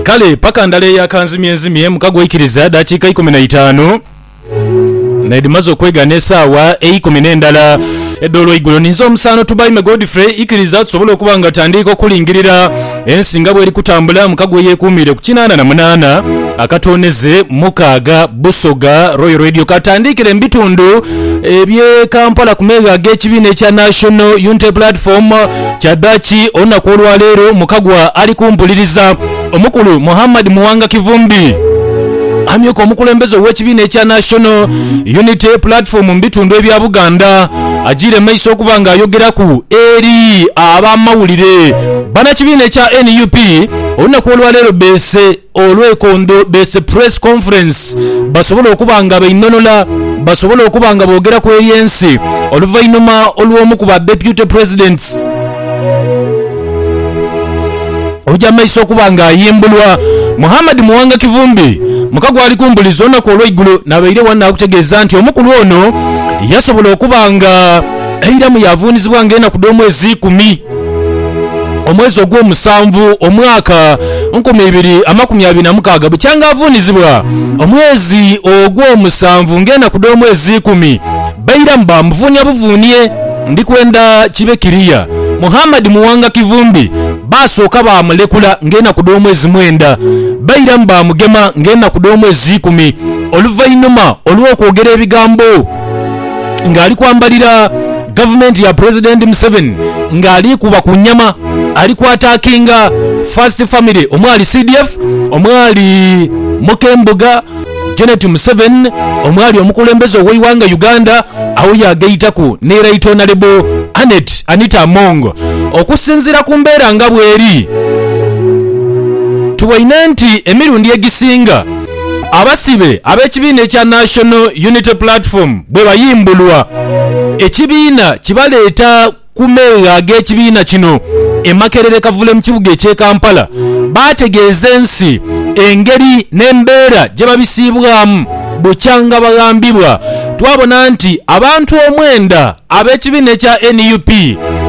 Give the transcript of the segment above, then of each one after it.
Kale paka ndala eya kanzimyenzimye muka gwaikiriza dakiika ikumi na itaanu naidhimaze okwegana esaawa eikumi n'endala edh'olweigulo ninze omusaano Tubaime Godfrey ikiriza tusobole okuba nga tandiika okulingirira ensi nga bweri kutambula muka gweyekuumiire ku kinaana na munaana akatooneze mukaaga Busoga Royal Radio katandiikire mu bitundu eby'e Kampala ku meegho ag'ekibiina ekya National Unity Platform Kyadhaaki olunaku olwa leero mukagwa ali kumpuliriza omukulu Muhammad Muwanga Kivumbi, amyuka omukulembeze ow'ekibiina ekya National Unity Platform mu bitundu ebya Buganda agiire mu maiso okuba nga ayogeraku eri abamawulire. Banakibiina ekya nup olunaku olwaleero beese. Olwekondo beese Press Conference basobola okuba nga bainhonhola basobola okuba nga boogera ku eby'ensi oluvainhuma olw'omu ku ba Deputy Presidents okuja mu maiso okuba nga ayimbulwa. Muhammad Muwanga Kivumbi muka gwali ku mbuliriza olunaku olweigulo nabaire wano nakutegeeza nti omukulu ono yasobola okuba nga eiramu yavuunizibwa nga enaku dh'omwezi ikumi. omwezi ogw'omusanvu omwaka nkumi ibiri amakumi abiri na mukaaga bukyanga avuunizibwa omwezi ogw'omusanvu ng'enaku dh'omwezi ikumi bairamu baamuvuunia buvuunie ndikwenda kibe kiriya Muhammad Muwanga Kivumbi baasooka baamulekula ng'enaku dh'omwezi mwenda bairamu baamugema ng'enaku dh'omwezi ikumi oluvainhuma olw'okwogera ebigambo nga ali kwambalira gavumenti ya Pulezidenti Museveni nga aliikuba ku nnyama ali kwatakinga First Family omwali CDF, omwali Mukembuga, Janet Museveni omwali omukulembeze ow'eighanga Uganda agho yaagaitaku ni Right Honalebo Annet Anita Among. Okusinziira ku mbeera nga bweri, tuboine nti emirundi egisinga, Abasibe ab'ekibiina ekya National Unity Platform bwebayimbulwa, ekibiina kibaleeta ku meeghe ag'ekibiina kino e Makerere Kavule mu kibuga eky'e Kampala baategeeza ensi engeri n'embeera gyebabisiibwamu bukyanga baghambibwa twabona nti abantu omwenda Ab'ekibiina ekya nup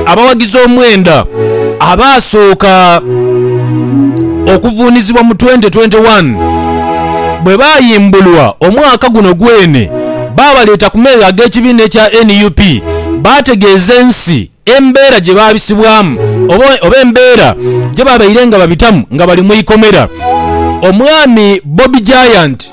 abawagizi omwenda abaasooka okuvuunizibwa mu twenti twenti wani bwe baayimbulwa omwaka guno gwene baabaleeta ku meere ag'ekibiina ekya nup baategeeza ensi embeera gye baabisibwamu oba embeera gye babaire nga babitamu nga bali mu ikomera. Omwami Bobi Giant.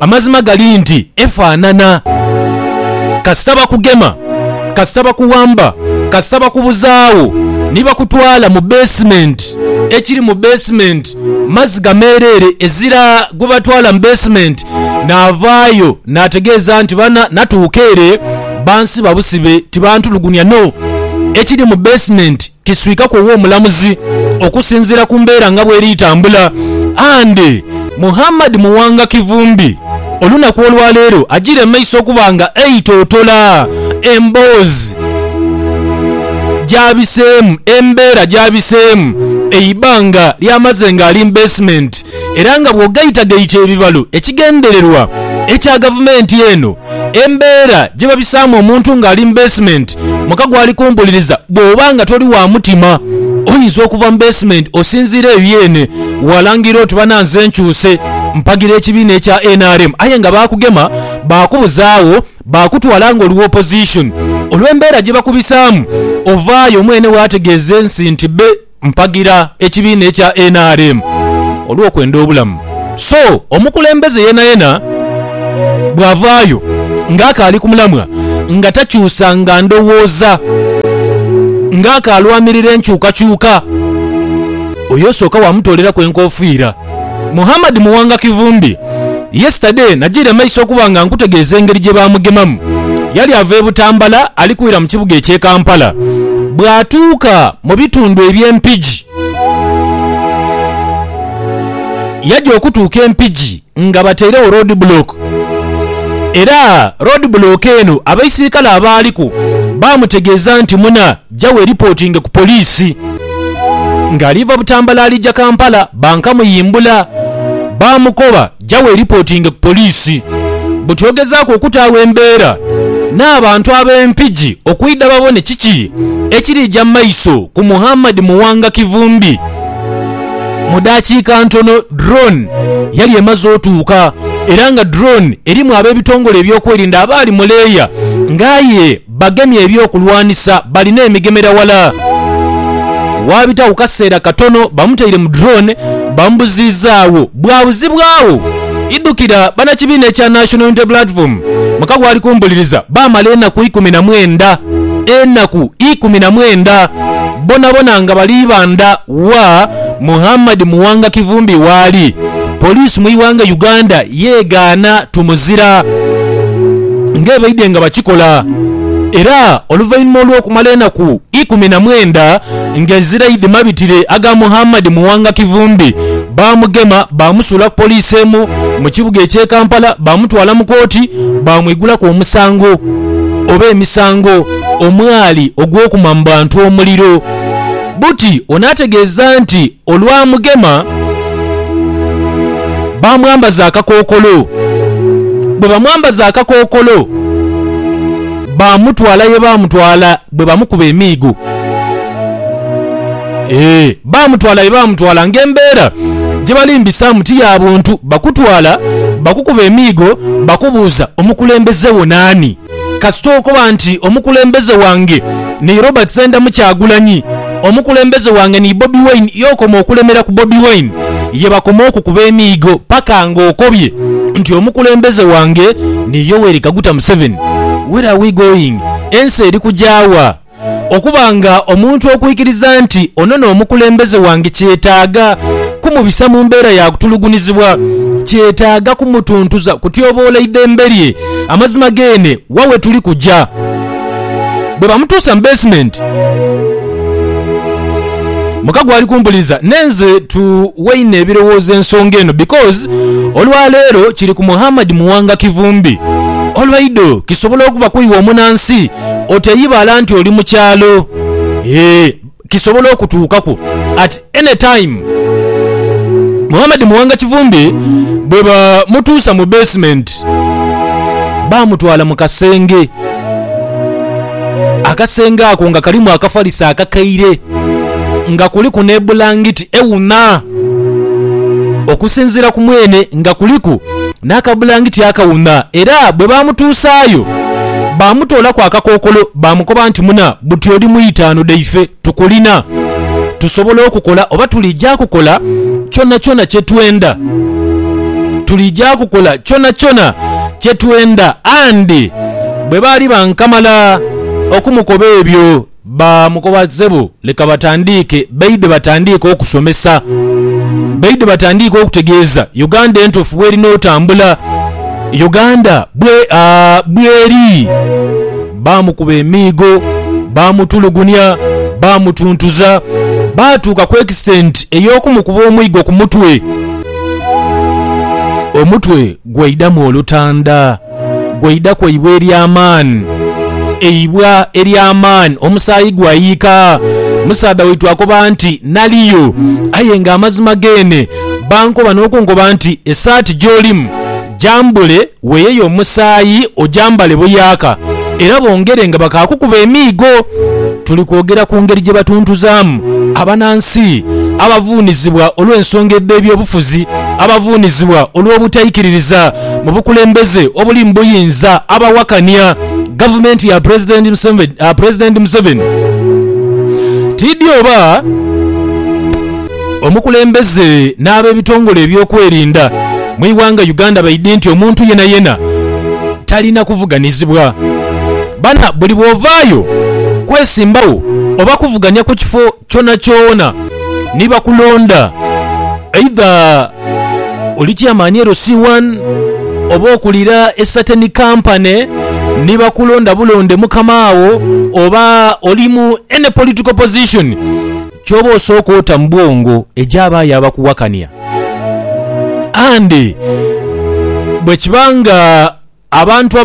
Amazima gali nti efanana. Kasita bakugema, kasita bakuwamba, kasita bakubuzaawo ni bakutwala mu basement, ekiri mu basement maziga meereere. Ezira gwebatwala mu basement naavaayo naategeeza nti bana natuuka ere bansiba busibe tibantulugunya no ekiri mu basement kiswikaku ow'omulamuzi okusinziira ku mbeera nga bweri etambula and Muhammad Muwanga Kivumbi olunaku olwaleero ajiire mu maiso okuba nga aitotola emboozi gyabiseemu embeera gyabiseemu eibanga lyamaze nga ali mu basement era nga bw'ogaitagaita ebibalo ekigendererwa ekya gavumenti eno embeera gye babisaamu omuntu ng'ali mu beesimenti muka gwali kumpuliriza bw'oba nga toli wa mutima oyinza okuva mu beesimenti osinziira eyo yeene waalangirira oti bana nze nkyuse mpagira ekibiina ekya nrm aye nga baakugema baakubuzaawo baakutwala nga oli wa opposition olw'embeera gye bakubisaamu ovaayo mwene waategeeza ensi nti Mpagira ekibiina ekya nrm olw'okwenda obulamu so omukulembeze yenayena bwavaayo nga akaali ku mulamwa nga takyusanga ndowooza nga akaalwanirira enkyukakyuka, oyo osooka waamutooleraku enkofiira. Muhammad Muwanga Kivumbi Yesterday najiire amaiso okuba nga nkutegeeza engeri gye baamugemamu. Yali ava e Butambala ali kwira mu kibuga eky'e Kampala. Bw'atuuka mu bitundu eby'e Mpigi, yaja okutuuka e Mpigi nga batairegho road block era road block eno abaisirikale abaaliku baamutegeeza nti muna Ja weeripotinge ku poliisi. Ng'ali va Butambala alija Kampala, bankamuyimbula. Baamukoba, Ja weeripotinge ku poliisi. Buti ogezaaku okutaagho embeera n'abantu ab'e Mpigi okwidha babone kiki ekiriija mu maiso ku Muhammad Muwanga Kivumbi. Mu daakiika ntono drone yali emaze otuuka era nga drone erimu ab'ebitongole ebyokwerinda abaali mu leeya nga aye Bagemye eby'okulwanisa bali n'emigemera wala. Waabitagho kaseera katono bamutaire mu drone bamubuziizagho bwabuzibwagho. Idhukira banakibiina ekya National Unity Platform muka gwali kumbuliriza baamala enaku ikumi na mwenda, enaku ikumi na mwenda, bonabona nga bali ibandha wa Muhammad Muwanga Kivumbi waali. Poliisi mu ighanga Uganda yegaana Tumuzira ng'ebaidhe nga bakikola era oluvainhuma olw'okumala enaku ikumi na mwenda ng'ezira aidhimabitire aga Muhammad Muwanga Kivumbi baamugema baamusuula ku poliisi emu mu kibuga eky'e Kampala baamutwala mu kooti baamwigulaku omusango oba emisango omwali ogw'okuma mu bantu omuliro. Buti ono ategeeza nti Olwamugema, baamwambaza akakookolo. Bwe bamwambaza akakookolo, baamutwala ye baamutwala bwe bamukuba emiigo. Eeh, baamutwala ye baamutwala ng'embeera gye balimbisaamu ti ya buntu. Bakutwala, bakukuba emiigo, bakubuuza omukulembeze wo naani. Kasita okoba nti omukulembeze wange ni Robert Sendamu Kyagulanyi, omukulembeze wange ni Bobi Wine, y'okoma okulemera ku Bobi Wine ye bakoma okukuba emiigo paka nga okobye nti omukulembeze wange ni Yoweri Kaguta Museveni. Where are we going? Ensi eri kugya wa? Okuba nga omuntu okwikiriza nti ono n'omukulembeze wange kyetaaga kumubisa mu mbeera ya kutulugunyizibwa. Kyetaaga kumutuntuza kutyoboola idhembe lye. Amazima geene wa we tuli kuja? Bwe bamutuusa mu beesimenti, muka gwali kumpuliriza ne nze tuweine ebirowoozo ensonga eno because olwa leero kiri ku Muhammad Muwanga Kivumbi. Olwaido kisobola okuba kwiwe omunansi oteyibala nti oli mu kyalo. Eeh kisobola okutuukaku at any time. Muhammad Muwanga Kivumbi bwe bamutuusa mu basement baamutwala mu kasenge. Akasenge ako nga kalimu akafaliso akakaire nga kuliku n'ebulangiti ewuna. Okusinziira ku mwene nga kuliku n'akabulangiti akawuna era bwe baamutuusaayo baamutoolaku akakookolo baamukoba nti, Muna, buti oli mu itaanu dhaife, tukulina. Tusobola okukola oba tuliija kukola kyonakyona kye twenda. Tuliija kukola kyonakyona kye twenda. And bwe baali bankamala okumukoba ebyo, Ba mukoba ssebo leka batandiike baidhe batandiike okusomesa baidhe batandiike okutegeeza Uganda entuufu bwerina otambula Uganda bwe bweri Baamukuba emiigo, baamutulugunia, baamutuntuza baatuuka ku extent ey'okumukuba omwigo ku mutwe omutwe gwaidhamu olutanda. Gwe idha ku eibwa ery'amaani, eibwa ery'amaani, omusaayi gwayiika. Musaadha waitu akoba nti, Naliyo, aye ng'amazima geene bankoba n'okunkoba nti, Esaati gy'olimu gyambule, weeyeyo omusaayi ogyambale buyaaka, era bongere nga bakaakukuba emiigo. Tuli kwogera ku ngeri gye batuntuzaamu abanansi abavuunizibwa olw'ensonga edh'ebyobufuzi, abavuunizibwa olw'obutaikiririza. mu bukulembeze obuli mu buyinza abawakania gavumenti ya Pulezidenti Museveni tiidhi oba omukulembeze n'abebitongole ebyokwerinda mu ighanga Uganda baidhi nti omuntu yenayena talina kuvuganizibwa bana buli bwovaayo kwesimbawo oba kuvuganya ku kifo kyonakyona ni bakulonda, eidha oli Chairman LC1 oba okulira e Sateni Company ni bakulonda bulonde mukama wo oba oli mu any political position ky'oba osooka ota mu bwongo egy'abaayo abakuwakania and bwe kiba nga Abantu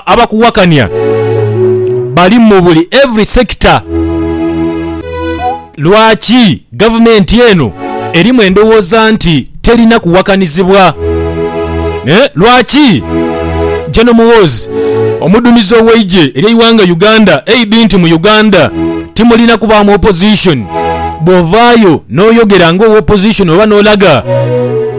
abakuwakania bali mu buli every sector. Lwaki gavumenti eno erimu endowooza nti terina kuwakanizibwa? Lwaki General Muhoozi omudumizi ow'eigye ery'eighanga Uganda aid nti mu Uganda timulina kubaamu opposition? Bwovaayo noyogera nga owa opposition oba nolaga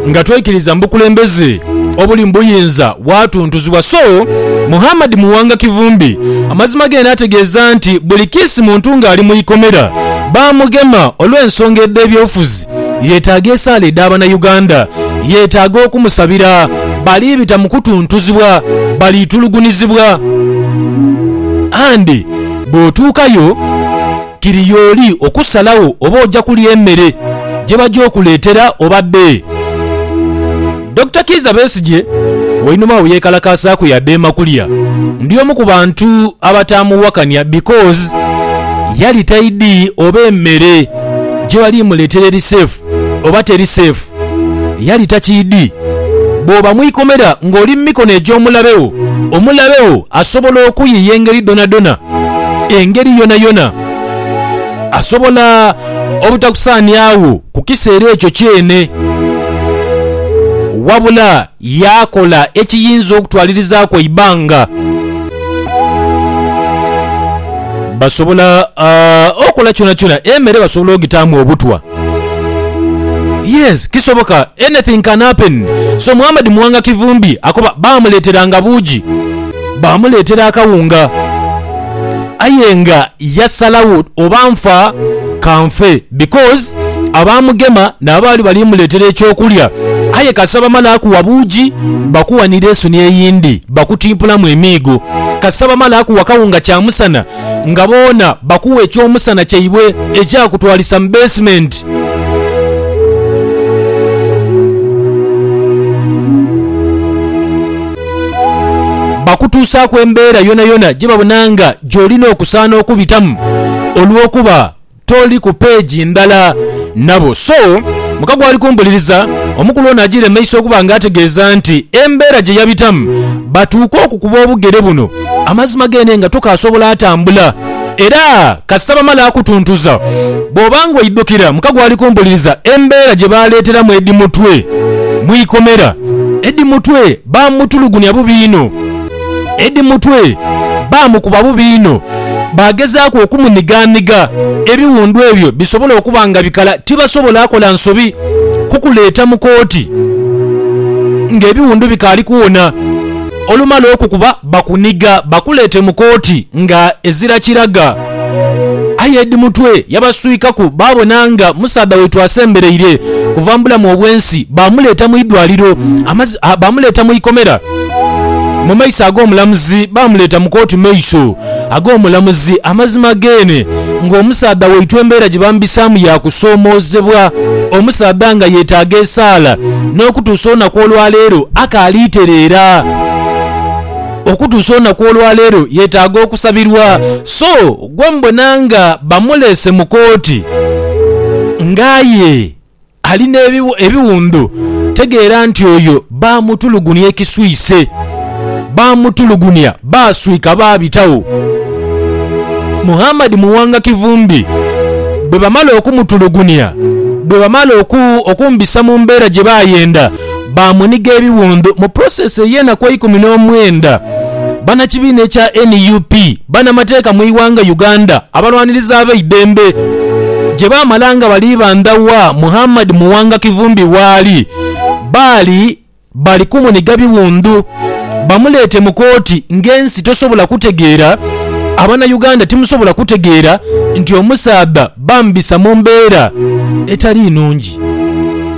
nga toikiriza mu bukulembeze obuli mu buyinza bwatuntuzibwa. So Muhammad Muwanga Kivumbi amazima gene ategeeza nti buli kiisi muntu ng'ali mu ikomera bamugema olw'ensonga edh'ebyobufuzi yetaaga esaala edha Banauganda, yetaaga okumusabira. Baliibita mu kutuntuzibwa, baliitulugunizibwa and bw'otuukayo. Kiri y'oli okusalagho oba oja kulya emere gye baja okuleetera oba dee. Dokita Kiiza Besigye wainuma agho yeekalakaasaaku yadheema kulya. Ndi omu ku bantu abataamuwakania because yali taidhi oba emere gye bali muleetera eri safe. oba teri seefu, yali takiidhi. Bw'oba mu ikomera ng'oli mu mikono egy'omulabe wo, omulabe wo asobola okuyiiya engeri dhonadhona, engeri yonayona. Asobola obutakusaaniagho ku kiseera ekyo kyeene. Wabula Yaakola ekiyinza okutwalirizaaku eibanga. Basobola okola kyonakyona. Emere basobola ogitaamu obutwa. Yes, kisoboka. Anything can happen. So Muhammad Muwanga Kivumbi akoba baamuleeteranga buugi. Baamuleetera akawunga, aye nga yasalagho oba nfa ka nfe because abaamugema nabo baali bali muleetera eky'okulya. Aye kasita bamala kuwa buugi, bakuwa ni lesoni eyindi, bakutimpulamu emiigo. Kasita bamala kuwa kawunga kyamusana, nga boona bakuwa eky'omusana kyaibwe ekyakutwalisa mu beesimenti. Bakutuusaaku embeera yonayona gye babona nga gy'olina okusaana okubitamu olw'okuba. toli ku peegi ndala nabo. So mukago ali kumbuliriza, omukulu ono ajiire mu maiso okuba nga ategeeza nti embeera gye yabitamu batuuke okukuba obugere buno amazima geene nga tokaasobola atambula era kasita bamala akutuntuza bw'oba nga oidukira mukago ali kumbuliriza embeera gye baaleeteramu Eddie Mutwe mu ikomera. Eddie Mutwe baamutulugunya bubi inho. Eddie Mutwe baamukuba bubi inho, baagezaaku okumunigaaniga ebiwundu ebyo bisobole okuba nga bikala. Tibasobola kola nsobi kukuleeta mu kooti ng'ebiwundu bikaali kuwona. Olumala okukuba, bakuniga bakuleete mu kooti nga ezira kiraga. Aye Eddie Mutwe yabaswikaku baabona nga musaadha waitu asembereire kuva mu bulamu obw'ensi, baamuleeta mu idwaliro, baamuleeta mu ikomera. mu maiso ag'omulamuzi, baamuleeta mu kooti maiso ag'omulamuzi. Amazima geene ng'omusaadha waitwe embeera gye bamubisaamu ya kusoomoozebwa, omusaadha nga yeetaaga esaala n'okutuusa olunaku olwaleero akaali tereera. Okutuusa olunaku olwaleero yeetaaga okusabirwa. So gwe mubona nga bamuleese mu kooti ng'aye. Ali n'ebiwundu, tegeera nti oyo baamutulugunia ekiswise. Baamutulugunia, baaswika baabitagho. Muhammad Muwanga Kivumbi bwe bamala okumutulugunia, bwe bamala okumbisa mu mbeera gye baayenda, baamuniga ebiwundhu mu pulosesi ey'enaku eikumi n'omwenda. Bannakibiina ekya nup banamateeka mu ighanga Uganda abalwanirizi abeidembe gye baamala nga bali bandha wa Muhammad Muwanga Kivumbi waali baali bali kumuniga biwundhu bamuleete mu kooti ng'ensi tosobola kutegeera abanauganda timusobola kutegeera nti omusaadha bamubisa mu mbeera etali nungi.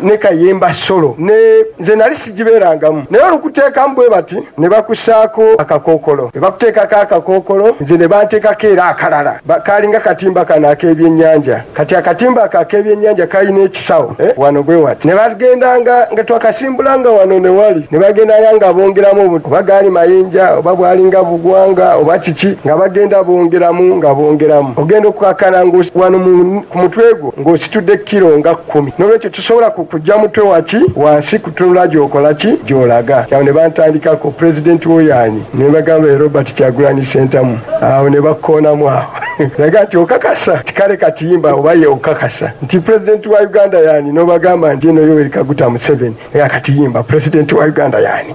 ne kayemba solo ne nze nali sigibeerangamu, naye olukuteekamu bwe bati ne bakusaaku akakookolo. Bwe bakuteekaku akakookolo nze ne banteekaku era akalala. Kaali nga katimba kano ak'ebyennyanja. Kati akatimba ako ak'ebyennyanja kaali n'ekisawo wano bwe wati. Ne bagendanga nga twakasimbulanga wano ne wali, ne bagendanga nga bongeramu obu, oba gaali mayinja oba bwalinga bugwanga oba kiki, nga bagenda bongeramu nga bongeramu. Ogenda okukakkana nga wano ku mutwe gwo ng'ositudde kilo nga. kumi. N'olwekyo tisobola kukugya mutwe waki wansi kutunula gy'okola ki, gy'olaga. Agho ne bantandikaku, Pulezidenti wo y'ani? Ne mbagamba, Ye Robert Kyagulanyi Ssentamu. Agho ne bakoonamu agho. N'aga nti, Okakasa nti kale kati imba oba ye okakasa nti Pulezidenti wa Uganda y'ani? N'obagamba nti, Y'eno Yoweri Kaguta Museveni. N'aga, Kati imba, Pulezidenti wa Uganda y'ani?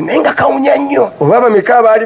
Naye nga kawunya nnyo. Oba bameka abaali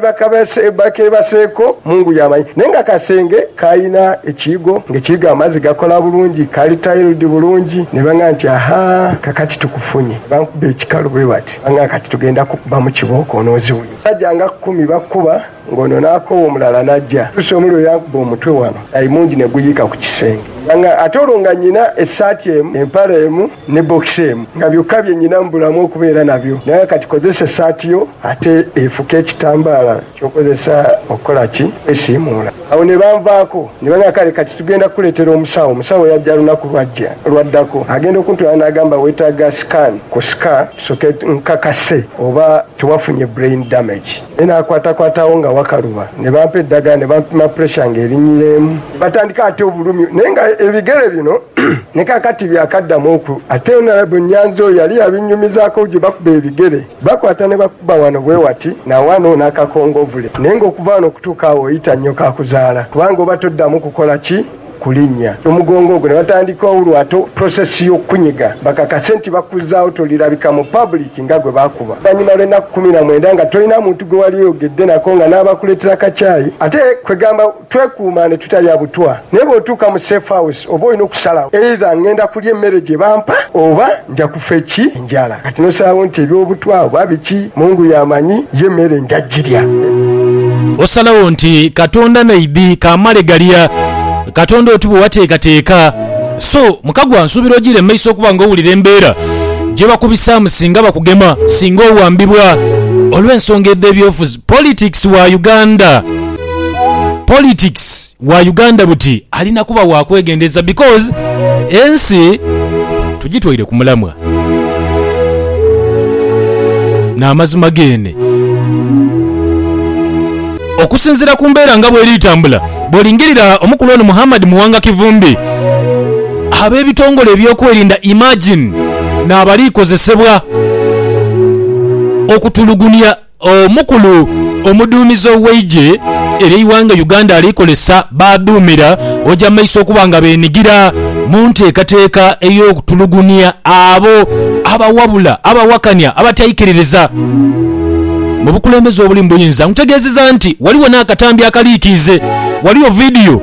bakeebaseeko, Mungu y'amanyi. Naye nga kasenge, kalina ekiigo, nga ekiigo amazzi gakola bulungi, kali tiled bulungi. Ne bang'amba nti, Aha, kakati tukufunye. Ne bankuba ekikalu bwe bati. Bang'amba, Kati tugenda kukubamu kibooko onooziwunya. Omusaja nga kumi bakuba. Ng'ono n'akoowa omulala n'aja. Lucy omuliro yankuba omutwe wano aye mungi ne guyiika ku kisenge nga ate olwo nga nyina essaati emu, empale emu ne bbokisi emu nga byokka bye nyina mu bulamu okubeera nabyo. Naye kati kozesa essaati yo ate efuke ekitambaala ky'okozesa okukola ki? Okwesiimuula. Awo ne banvaako ne bangamba, Kale kati tugenda kukuleetera omusawo. Omusawo yajja lunaku lwajja olwaddako. Agenda okuntwala n'agamba, Weetaaga scan kusika tusooke nkakase oba tewafunye brain damage. Me naakwatakwatagho nga wakaluba, ne bampa edagala, ne bampima puresha nga erinyireemu. Batandika ate obulumi, naye nga ebigere bino ni kaakati byakaddamu oku. Ate Honourable Nyanzi oyo yali yabinnyumizaako gye bakuba ebigere, bakwata ne bakukuba wano bwe wati, na wano, n'akakongovule. Naye nga okuva wano okutuuka awo oyita nnyo kaakuzaala, kubanga oba toddamu kukola ki? kulinnya ku mugongo ogwo ne batandika olwato prosesi y'okukunyiga bakakase nti bakuzaagho tolirabika mu public nga gwe baakuba vanyuma lw'ennaku kumi na mwenda nga tolina muntu gwe wali oyogedde nako nga n'abakuleetera kacaayi ate kwegamba twekuuma ne tutalya butwa naye bw'otuuka mu safe house oba olina okusalagho either ngenda kulya emmere gye bampa oba nja kufa eki Njala. Kati n'osaagho nti eby'obutwa oba biki, Mungu y'amanyi, ye mere nja gilya. Osalagho nti Katonda naidhi kamale galya. Katonda oti bwe wateekateeka. So, mukagwa, nsuubira ojiire mu maiso okuba nga owulira embeera gye bakubisaamu singa bakugema, singa owambibwa olw'ensonga edh'ebyobufuzi, politics wa Uganda. Politics. wa Uganda buti alina kuba wa kwegendereza because ensi tugitwaire ku mulamwa. N'amazima geene. Okusinziira ku mbeera nga bweri etambula, bw'olingirira omukulu ono Muhammad Muwanga Kivumbi, ab'ebitongole ebyokwerinda imagine n'abalikozesebwa okutulugunya Omukulu omuduumizi ow'eigye ery'eighanga Uganda ali kozesa b'aduumira oja mu maiso okuba nga benigira mu nteekateeka ey'okutulugunia abo abawabula, abawakania, abataikiririza mu bukulembeze obuli mu buyinza. Nkutegeezeza nti ghaligho n'akatambi akaliikiize. Ghaligho vidiyo.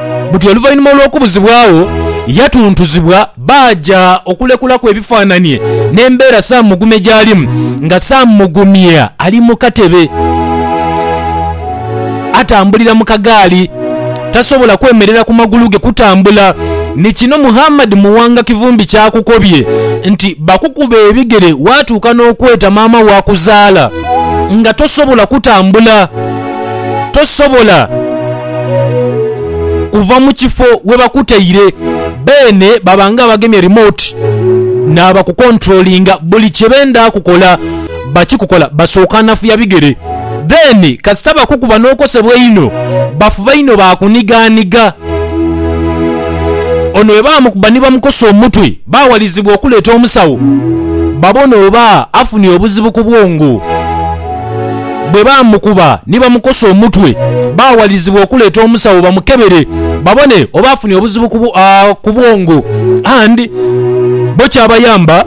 buti oluvainhuma olw'okubuzibwagho yatuntuzibwa baaja okulekulaku ebifaananie n'embeera Sam Mugumya gy'alimu nga Sam Mugumya ali mu katebe atambulira mu kagaali tasobola kwemerera ku magulu ge kutambula ni kino Muhammad Muwanga Kivumbi ky'akukobye nti bakukuba ebigere waatuuka n'okweta maama wo akuzaala nga tosobola kutambula tosobola kuva mu kifo we bakutaire. Beene baba nga abagemye remote n'abakukontulolinga. Buli kye benda kukola bakikukola. Basooka nafuya bigere then kasita bakukuba n'okosebwa einho bafuba inho baakunigaaniga. Ono bwe bamukuba ni bamukosa omutwe baawalizibwa okuleeta omusawo babone oba afunye obuzibu ku bwongo. Bwe baamukuba ni bamukosa omutwe, baawalirizibwa okuleeta omusawo bamukebere babone oba afunye obuzibu ku bwongo and bo kyabayamba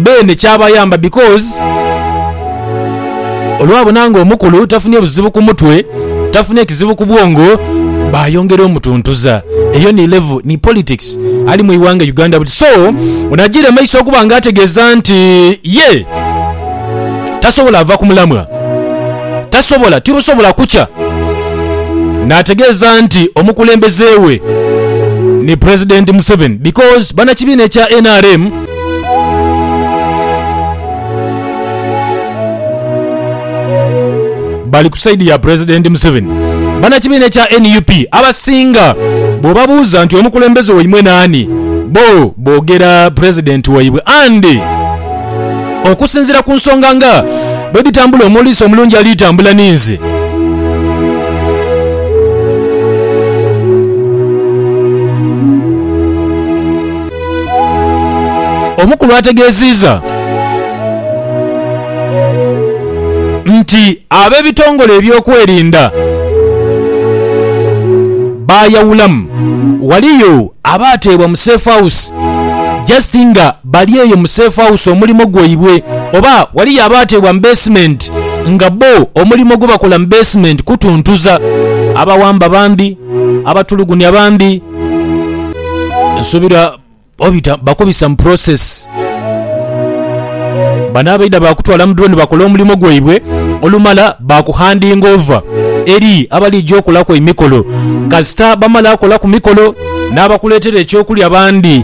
beene kyabayamba because olwabona nga omukulu tafunye buzibu ku mutwe, tafunye kizibu ku bwongo baayongera omutuntuza. Eyo ni level ni politics ali mu ighanga Uganda buti so ono ajiire maiso okuba nga ategeeza nti ye. tasobola va ku mulamwa, tasobola, tirusobola kukya n'ategeeza nti omukulembeze we ni Pulezidenti Museveni because bannakibiina ekya nrm, bali ku sayidi ya Pulezidenti Museveni. Bannakibiina ekya nup abasinga bw'obabuuza nti omukulembeze waimwe naani, bbo boogera Pulezidenti waibwe and, Okusinziira ku nsonga nga bwe dhitambula omuliisa omulungi ali tambula ninzi. Omukulu ategeziiza nti abebitongole ebyokwerinda baayawulamu, waliyo abaateebwa mu safe house just nga. Bali eyo mu safe house omulimo gwaibwe oba waliyo abaateebwa mu basement nga bbo omulimo gwebakola mu basement kutuntuza. Abawamba bambi, abatulugunya bambi nsuubira obita bakubisa mu process. Bano abaidha baakutwala mu drone bakola omulimo gwaibwe olumala baakuhandinga over eri abaliija okolaku emikolo. Kasita bamala kolaku mikolo n'abakuleetera ekyokulya bandi.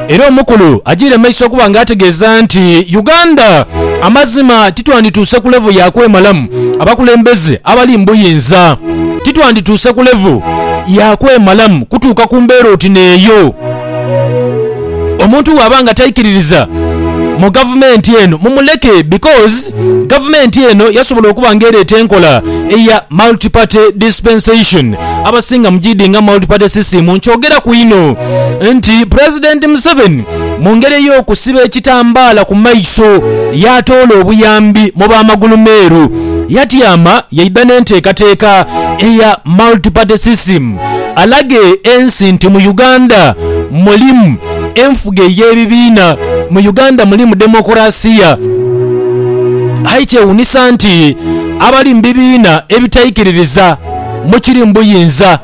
Era omukulu ajiire mu maiso okuba nga ategeeza nti Uganda amazima titwandituuse ku level ya kwemalamu abakulembeze abali mu buyinza titwandituuse ku level ya kwemalamu kutuuka ku mbeera oti n'eyo. Omuntu bw'aba nga taikiririza mu gavumenti eno mumuleke because gavumenti eno yasobola okuba nga ereeta enkola eya Multi Party Dispensation abasinga mugidinga Multi Party System nkyogeraku inho. nti Pulezidenti Museveni mu ngeri ey'okusiba ekitambaala ku maiso yaatoola obuyambi mu ba magulumeeru, yatyama yaidha n'enteekateeka eya Multi Party System alage ensi nti mu Uganda mulimu enfuga ey'ebibiina, mu Uganda mulimu demokulasiya. Aye kyewuunisa nti abali mu bibiina ebitaikiririza, mu kiri mu buyinza.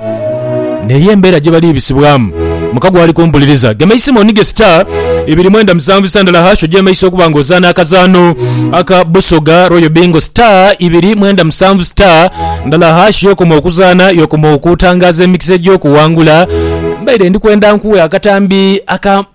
N'eyo embeera gye baliibisibwamu. Mukago ali kumpuliriza. Gema eisimu onige sita ibiri mwenda musanvu isa ndala hash ogyeme isa okuba nga ozaana akazaano aka Busoga Royal Bingo sita ibiri mwenda musanvu sita ndala hash y'okoma okuzaana y'okoma okutangaaza emikisa egy'okuwangula. Mbaire ndi kwenda nkuwe akatambi aka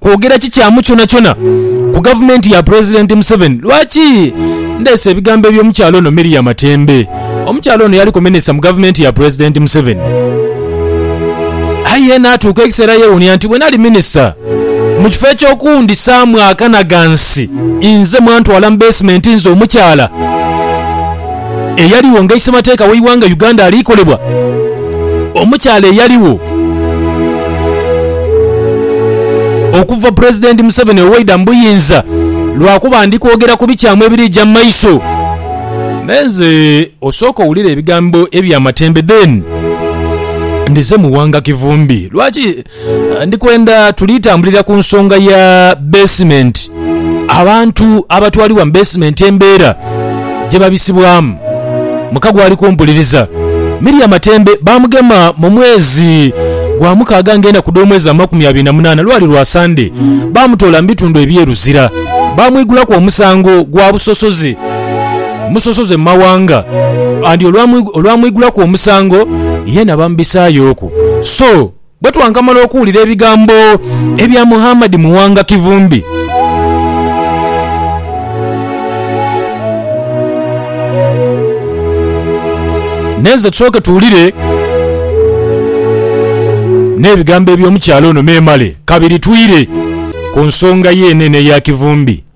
kwogera kikyamu kyonakyona ku gavumenti ya Pulezidenti Museveni. Lwaki ndeese ebigambo eby'omukyala ono Miria Matembe? Omukyala ono yaliku minisita mu gavumenti ya Pulezidenti Museveni. Aye naatuuka ekiseera yeewuunia nti bwe nali minisita, mu kifo eky'okundhisaamu akanagansi inze mwantwala mu beesimenti nze omukyala. eyaligho nga isemateeka w'eighanga Uganda ali kolebwa, omukyala eyaligho okuva Pulezidenti Museveni owaida mu buyinza lwakuba ndi kwogera ku bikyamu ebirija mu maiso. Naye nze osooke owulire ebigambo eby'amatembe then ndize mu Wanga Kivumbi. Lwaki? Ndi kwenda tuli tambulira ku nsonga ya beesimenti, abantu abatwalibwa mu beesimenti embeera gye babisibwamu. Muka gwali kumpuliriza. Miria Matembe baamugema mu mwezi gwa mukaaga ng'enda ku dh'omwezi amakumi abiri na munaana. Lwali lwa Sande. Baamutoola mu bitundu eby'e Luzira. Baamwigulaku omusango gwa busosoze musosoze mu mawanga. And olwamwigulaku omusango, yeena bamubisaayo oku. So. Bwe twankamala okuwulira ebigambo ebya Muhammad Muwanga Kivumbi. Nenze tusooke tuwulire n'ebigambo eby'omukyala ono memale kabiri twire ku nsonga ye eno eno eya Kivumbi.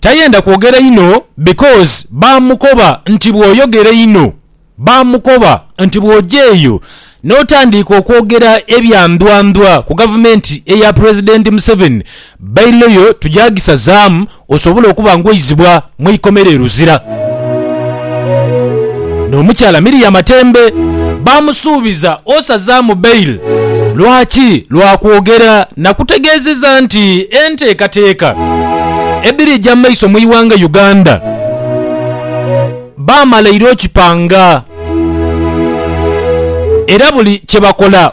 Tayenda kwogera inho because baamukoba nti bw'oyogera einho, baamukoba nti bw'oja eyo n'otandiika okwogera ebya ndwandwa ku gavumenti eya Pulezidenti Museveni, bailo yo tugya gisazaamu osobole okuba ng'oizibwa mu ikomera e Luzira. N'omukyala Miriama Tembe baamusuubiza osazaamu bail. Lwaki? Lwa kwogera na kutegeezeza nti enteekateeka edhiri eja mu maiso mu ighanga Uganda baamala ira okipanga era buli kye bakola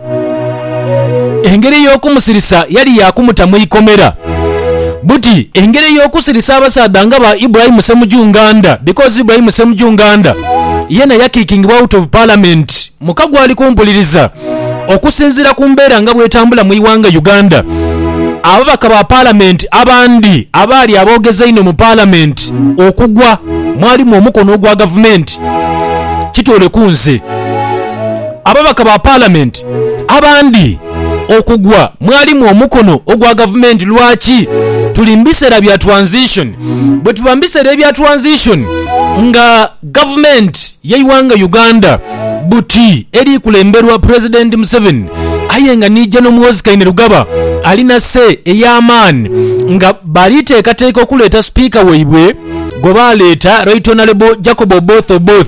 Engeri ey'okumusirisa yali ya kumuta mu ikomera. Buti engeri ey'okusirisa abasaadha nga ba Ibrahim Ssemujju Nganda because Ibrahim Ssemujju Nganda yeena yakikingibwa out of parliament muka gwali kumpuliriza okusinziira ku mbeera nga bw'etambula mu ighanga Uganda ababaka ba parliament abandi abaali aboogezi einho mu parliament okugwa mwalimu omukono ogwa gavumenti kitooleku nze Ababaka ba Palamenti abandi okugwa mwalimu omukono ogwa Gavumenti. Lwaki tuli mu biseera bya transition? Bwetuba mu biseera ebya transition nga Gavumenti y'eighanga Uganda buti eri kulemberwa Pulezidenti Museveni aye nga ni Gen Muhoozi Kainerugaba alina say ey'amaani nga bali teekateeka okuleeta Sipiika waibwe gwe baaleeta Right Honourable Jacob Oboth Oboth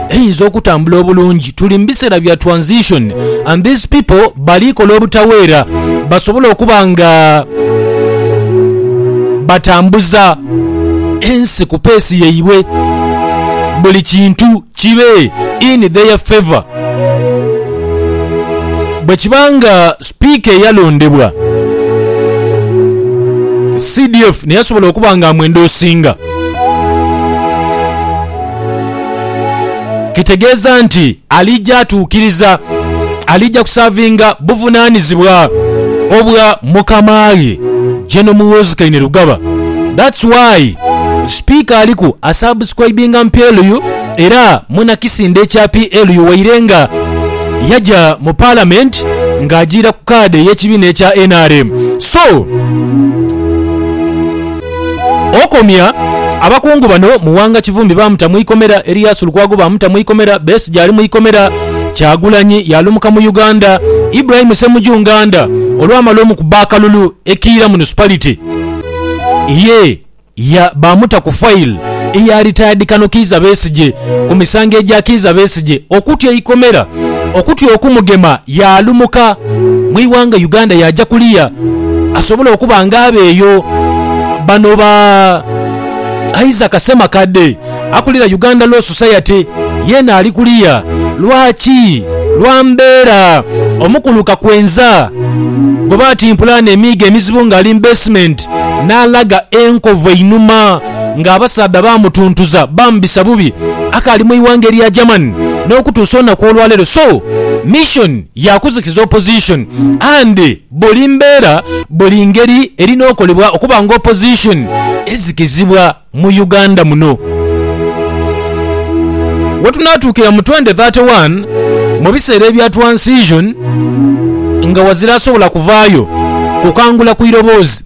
eyinza okutambula obulungi. Tuli mu biseera bya transition and these people bali kola obutaweera basobole okuba nga batambuza ensi ku peesi yaibwe, buli kintu kibe in their favour. Bwe kiba nga sipiika eyalondebwa CDF niye asobola okuba nga amwendosinga, Kitegeeza nti alija atuukiriza, alija kusaavinga buvunaanizibwa obwa mukama ghe General Muhoozi Kainerugaba. That's why Sipiika aliku asubscribinga mu PLU era muna kisinde kya PLU waire nga yaja mu Palamenti ng'ajiira ku kaadi ey'ekibiina ekya nrm. So. Okomya, Abakungu bano, Muwanga Kivumbi baamuta mu ikomera, Erias Lukwago baamuta mu ikomera, Besigye ali mu ikomera, Kyagulanyi yaalumuka mu Uganda, Ibrahim Ssemuju Nganda olwamala omukuba akalulu e Kiira Municipality ye ya baamuta ku file eya Retired Kano Kiiza Besigye ku misango egya Kiiza Besigye okutya eikomera okutya okumugema yaalumuka mu ighanga Uganda yaaja kuliya asobole okuba nga aba eyo. Bano ba Isaac Ssemakadde akulira Uganda Law Society yeena ali kuliya. Lwaki? Lwa mbeera omukulu Kakwenza gwe baatimpula eno emiiga emizibu ng'ali mu beesimenti n'alaga enkovu einhuma. nga abasaadha baamutuntuza baamubisa bubi akaali mu ighanga elya Germany n'okutuusa olunaku olwaleero so mission ya kuzikiza opposition and buli mbeera buli ngeri erina okolebwa okuba nga opposition ezikizibwa mu Uganda muno wetunaatuukira mu twenty thirty one mu biseera ebya transition nga wazira asobola kuvaayo kukangula ku iroboozi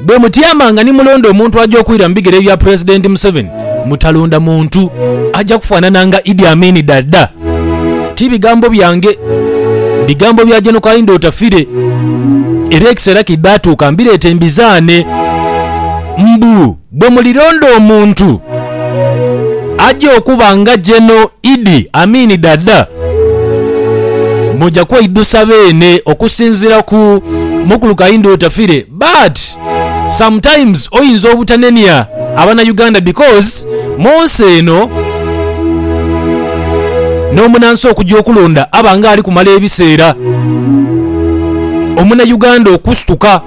Bwe mutyamanga ni mulonda omuntu aja okwira mu bigere bya Pulezidenti Museveni, mutalonda muntu aja kufaanana nga Idi Amin Dada. Ti bigambo byange, bigambo bya Gen Kaindo Otafire. Era ekiseera kidaatuuka mbireete mbizaane. Mbu. Bwe mulilonda omuntu aja okuba nga Geno Idi Amin Dada, muja kweidhusa beene okusinzira ku Mukulu Kahinda Otafire but sometimes oyinza obutanenia abana Uganda because munsi eno nomunansi okuja okulonda aba nga alikumala ebiseera omuna Uganda okusituka.